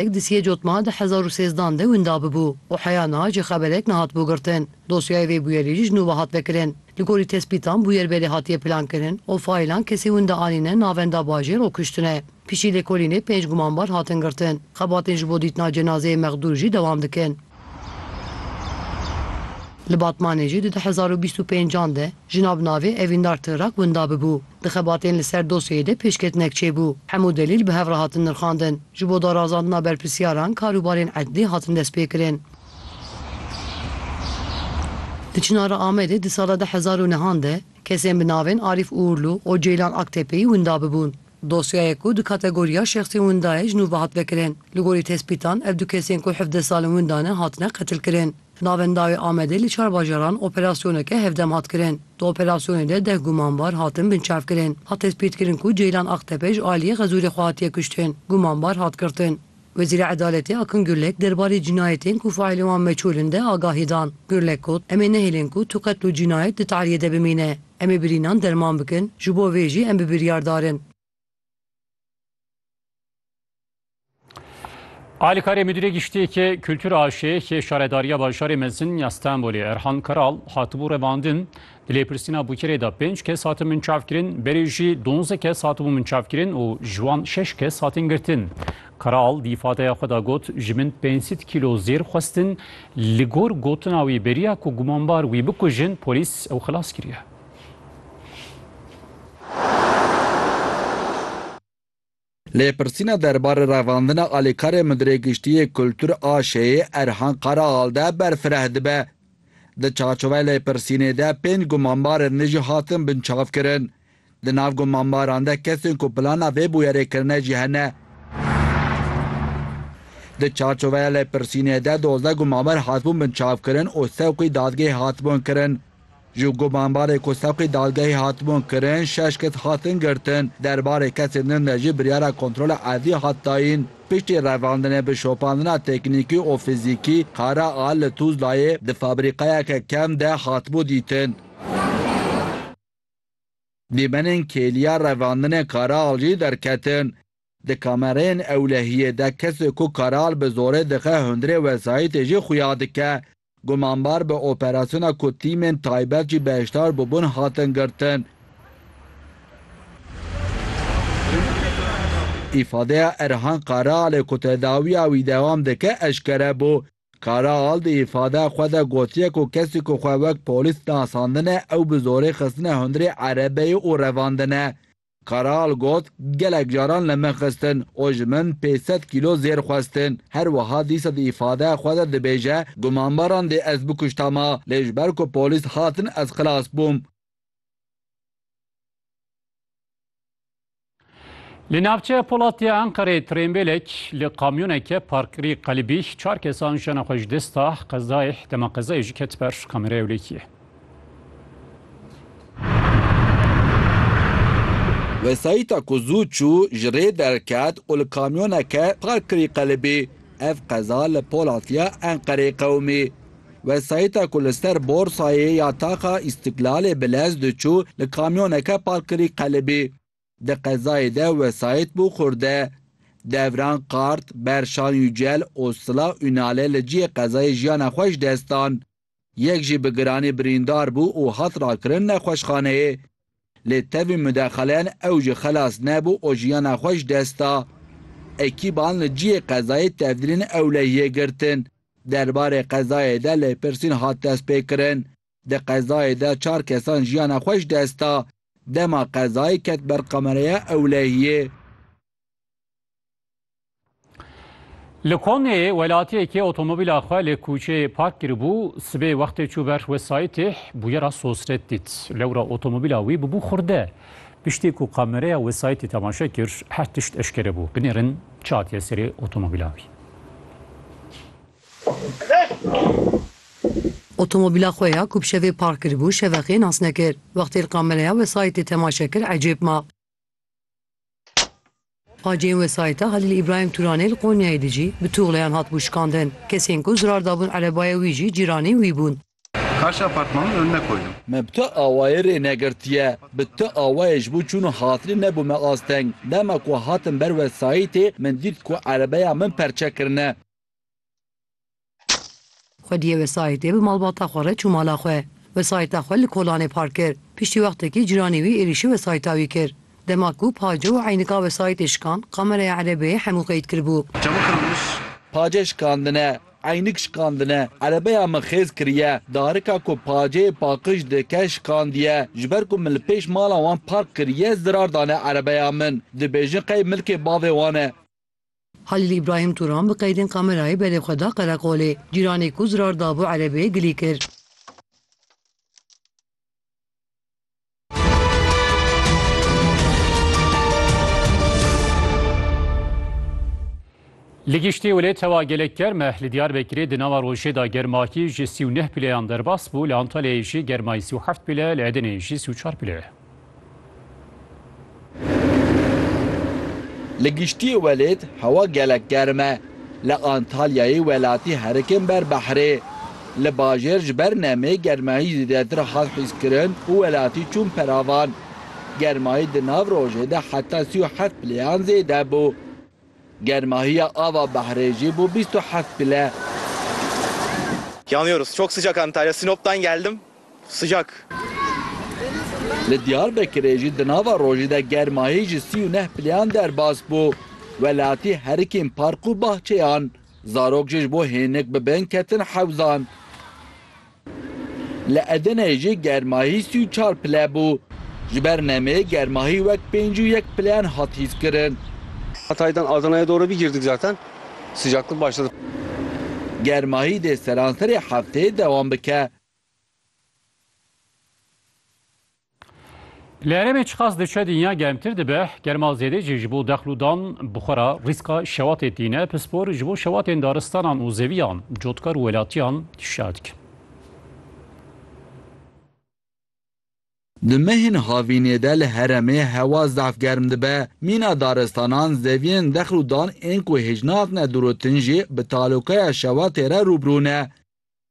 Êk disiyê cotma di hezar û sêzdan de winda bibû û heya niha jî xeberêk nehatibû girtin. Dosyayê vê bûyerî jî ji nû ve hat vekirin. Li gorî tespîtan bûyer belê hatiye plankirin û faylan kesê winda anîne navenda bajêr û kuştine. Piştî lêkolînê pênc gumanbar hatin girtin. Xebatên ji bo dîtina cenazeyê mexdûr jî dewam dikin. Li Batmanê jî di du hezar û bîst û pênc an de jina bi navê Evîndar Tigrak winda bibû. Di xebatên li ser dosyeyê de pêşketinek çêbû. Hemû delîl bi hev re hatin nirxandin. Ji bo darazandina berpirsîyaran karûbarên edlî hatin destpêkirin. Di Çinara Amedê di sala du hezar û neh an de kesên bi navên Arîf Uurlu û Ceylan Aktepeyî winda bibûn. Dosyayê ku di kategoriya şexsên winda ye ji nû ve hat vekirin. Li gorî tespîtan ev du kesên ku hevdeh sal in winda ne hatine qetilkirin. Navên dawê Amedê li çar bajaran operasyoneke hevdem hat kirin. Di operasyonê de deh gumanbar hatin binçavkirin. Hat tespîtkirin ku Ceylan Aqtepe ji aliyê Xezûrê xwe hatiye kuştin. Gumanbar hat girtin. Wezîra Edaletê Akın Gürlek derbarê cînayetên ku faîlên wan meçûl in de agahî dan. Gürlek got, Em ê nehêlin ku tu qetil û cînayet di tariyê de bimîne. Em ê birînan derman bikin, ji bo vê jî em bi biryardar in. Alîkarê Mudîrê Giştî yê Kultur a Aşêyekê Şaredariya Bajarê Mezin ya Stenbolê Erhan Karal hatibû revandin, Di lêpirsîna Bûkirê de pênc kes hatin minçavkirin, berê jî donzdeh kes hatibûn minçavkirin û ji wan şeş kes hatin girtin. Karal di îfadeya xwe de got, Ji min pênc sed kîlo zêr xwestin, li gor gotina wî beriya ku gumanbar wî bikujin, polîs ew xilas kiriye. Lêpirsîna derbarê revandina alîkarê Mudirê Giştî yê Kultur a Şêyê Erhan Karaal de berfireh dibe. Di çarçoveyê lêpirsînê de pênc gumanbarên nû jî hatin binçavkirin. Di nav gumanbaran de kesên ku plana vê bûyerê kirine jî hene. Di çarçoveya lêpirsînê de dozdeh gumanbar hatibûn binçavkirin û sewqî dadgehê hatibûn kirin. Ji gumanbarê ku sevqî dadgehê hatibûn kirin şeş kes hatin girtin. Derbarê kesên din de jî biryara kontrola erdî hat dayîn. Piştî revandinê bi şopandina teknîkî û fizîkî, kara a li Tuzlayê di fabrîkayeke kem de hatibû dîtin. Dîmenên kêliya revandinê kara al jî derketin. Di kamereyên ewlehiyê de kesê ku kara al bi zorê dixe hundirê wesayîtê jî xuya dike. Gumanbar bi operasyona ku tîmên taybet jî beşdar bûbûn hatin girtin. Îfadeya Erhan Karahalê ku tedawiya wî dewam dike eşkere bû. Karahal di îfadeya xwe de gotiye ku kesî ku xwe wek polîs nasandine ew bi zorê xistine hundirê erebeyê û revandine. Karaal got, Gelek caran li min xistin û ji min pênc sed kîlo zêr xwestin. Her wiha dîsa di îfadeya xwe de dibêje, Gumanbaran dê ez bikuştama, lê ji ber ku polîs hatin ez xilas bûm. Li navçeya Polat ya Enqereyê trênbêlek li kamyoneke parkirî qelibî çar kesan jiyana xwe ji dest da, qezayê dema qezayê jî ket ber kameraya wlêkiyê. Wesayîta ku zû çû ji rê derket û li kamyoneke park kirî qelibî. Ev qeza li Polatya Enqereyê qewimî. Wesayîta ku li ser borsayê ya taxa Îstîklalê bi lez diçû li kamyoneke park kirî qelibî. Di qezayê de wesayît bû xurde. Devran Kart, Berşan Yücel û Sıla Ünal'e li cihê qezayê jiyana xwe ji dest dan. Yek jî bi giranî birîndar bû û hat rakirin nexweşxaneyê. Lê tevî mudexelen ew jî xelas nebû û jiyana xwe ji dest da. Ekîban li cihê qezayê tevdirên ewlehiyê girtin. Derbarê qezayê de lêpirsîn hat destpêkirin. Di qezayê de çar kesan jiyana xwe ji dest da. Dema qezayê ket ber kameraya ewlehiyê. Li Konyeyê welatiyekê otomobîla xwe li kûçeyê park kiribû, sibê wextê çû ber wesayîtê bûyera sosret dît. Lewra otomobîla wî bûbû xurde. Piştî ku kamereya wesayîtê temaşe kir, her tişt eşkere bû. Binêrin çi hatiye serê otomobîla wî. Otomobîla xwe ya ku bi şevê park kiribû şeveqê nas nekir. Wextê li kamereya wesayîtê temaşe kir ecêb ma. Pajiyên wesayîta Halîl Îbrahîm Turanê li Konyayê de jî bi tuxleyan hatibû şikandin. Kesên ku zirar dabûn erebaya wî jî cîranên wî bûn. Karşî apartmanê min önüne koydum. Me bi tu awayê rê negirtiye. Bi tu awayê ji bo çûn û hatinê nebû me asteng. Dema ku hatim ber wesayîtê min dît ku erebeya min perçe kirine. Xwediyê wesayîtê bi malbata xwe re çû mala xwe. Wesayîta xwe li kolanê park kir. Piştî wextekî ciranê wî êrîşî wesayîta wî kir. Dema ku Pace û eynika wesayîtê şikand, kameraya erebeyê hemû qeyd kiribû. Pace şikandine, eynik şikandine, erebeya min xêz kiriye. Darika ku Paceyê paqij dike şikandiye. Ji ber ku min li pêş mala wan park kiriye zirar dane erebeya min. Dibêjin qey milkê bavê wan e. Halîl Îbrahîm Turan bi qeydên kamerayê berê xwe da qereqolê. Cîranê ku zirar dabû erebeyê gilî kir. Li giştî wê tewa gelek germ e. Li Diyarbekirê di nava rojê de germakî ji sî û neh pîleyan derbas bû. Li Antalyayê jî germayî sî û heft pîle, li Edeneyê jî sî û çar pîle ye. Li giştî welêt hewa gelek germ e. Li Antalyayê welatî herikin ber behrê. Li bajêr ji ber nemê germahî zêdetir hat hîskirin û welatî çûn peravan. Germahî di nav rojê de heta sî û heft plêyan zêde bû. Germahiya ava behrê jî bû bîst û heft pile. Yanıyoruz. Çok sıcak Antalya. Sinop'tan geldim. Sıcak. Li Diyarbekirê jî di nava rojî de germahî ji sî û neh pileyan derbas bû. Welatî herikên park û bahçeyan. Zarok jî ji bo hênik bi bin ketin hewzan. Li Edeneyê jî germahî sî û çar pile bû. Ji ber nemê germahî wek pênc û yek pileyan hat hîskirin. Germahî dê seranserê hefteyê dewam bike. Li herêmê çiqas diçe dinya germtir dibe, germa zêdê jî ji bo dexl û dan bixwera rîska şewatê tîne, pispor ji bo şewatên daristanan û zeviyan cotkar û welatiyan hişyar dikin. Di mehên havînê de li heremê hewa zaf germ dibe, mîna daristanan, zeviyên dexl û dan ên ku hêj nahatine dûrûtin jî bi talokeya şewatê re rûbirû ne.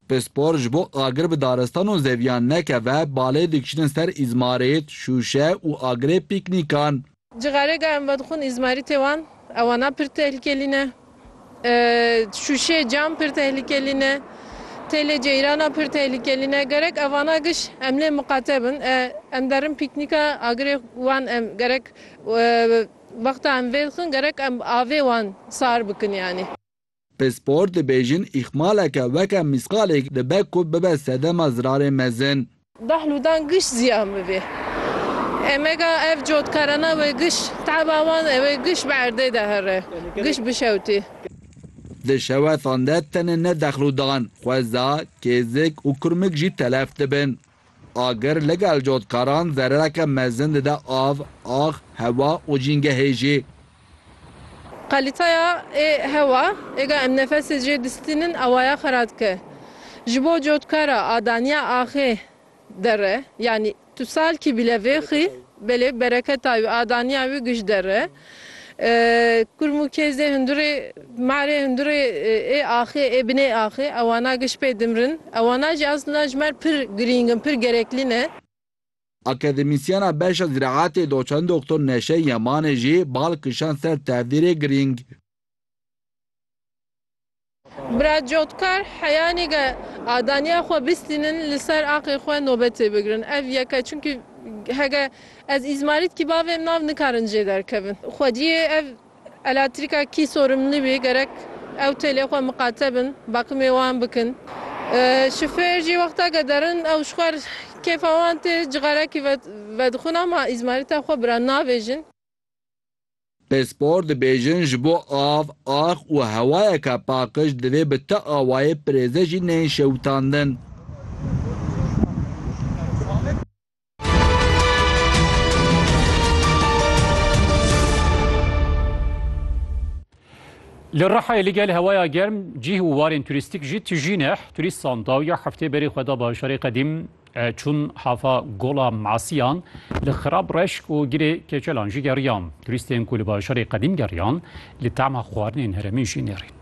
Pispor ji bo agir bi daristan û zeviyan nekeve balê dikişînin ser îzmarît, şûşe û agirê pîknîkan. Cixarê ka em vedixwin îzmarîtê wan ew ana pir tehlîkelî ne. Şûşê, cam pir tehlîkelî ne. Têlê ceyrana pir tehlîkelî ne. Gerek ev ana giş em lê miqate bin. Em derin pîknîka agirê wan em gerek wexta em vêdixin gerek em avê wan sar bikin yanî. Pispor dibêjin îxmaleke weke mîsqalêk dibe ku bibe sedema zirarê mezin. Behlûdan giş ziyan bibê. Emega ev cotkarana wê giş, taba wan e wê giş bi erdê de here. Giş bişewtê. Di şewetan de tenê ne Dehlûdan, Xweza, Kêzik û Kurmik jî telef dibin. Agir li gel cotkaran zerereke mezin dide av, ax, hewa û jîngehê jî. Kalîteya ê hewa ê ga em nefesê jê distînin awaya xwe radike. Ji bo cotkara a daniya axê derre, yanî tu salkî bîle vêxî belê bereketa wî a daniya wî giş derre. Kurm û kêz ê hundirê ma rê hundirê ê axê ê binê axê ewana giş pê dimrin ewana jî eslinda ji mer pir girîng in pir gereklî ne. Akademîsyena beşa ziraetê doçent Doktor Neşe Yemanê jî bal kişand ser tevdîrê girîng. Bira Cotkar, Heya nêge adaniya xwe bistînin li ser axê xwe nobetê bigirin. Ev yek e çimkî hege ez îzmarît kî bavêm nav nikarin jê derkevin. Xwediyê ev elatrîka kî sorimli bî gerek ew têlê xwe miqate bin bakimê wan bikin. Şifêr jî wexta ke derin ew ji xwe kêfa wan tê cixarekî vedixwin ama îzmarîta xwe bira navêjin. Pispor dibêjin ji bo av, ax û hewayeke paqij divê bi ti awayê pirêze jî nên şewitandin. Li Rihayê li gel hewaya germ, cih û warên turîstîk jî tijî neh, turîstan dawiya heftê berê xwe da bajarê qedîm Çûn hava Gola Masiyan li xirab reşk û girê keçelan jî geriyan. Turîstên ku li bajarê qedîm geriyan, li tema xwarinên herêmê jî nêrîn.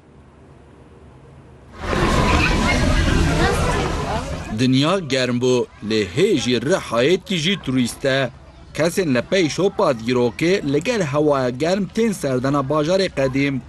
Dinya germ bû lê hê jî re hayêtkî jî turîst e. Kesên li pey şopa dîrokê li gel hewaya germ tên serdana bajarê qedîm.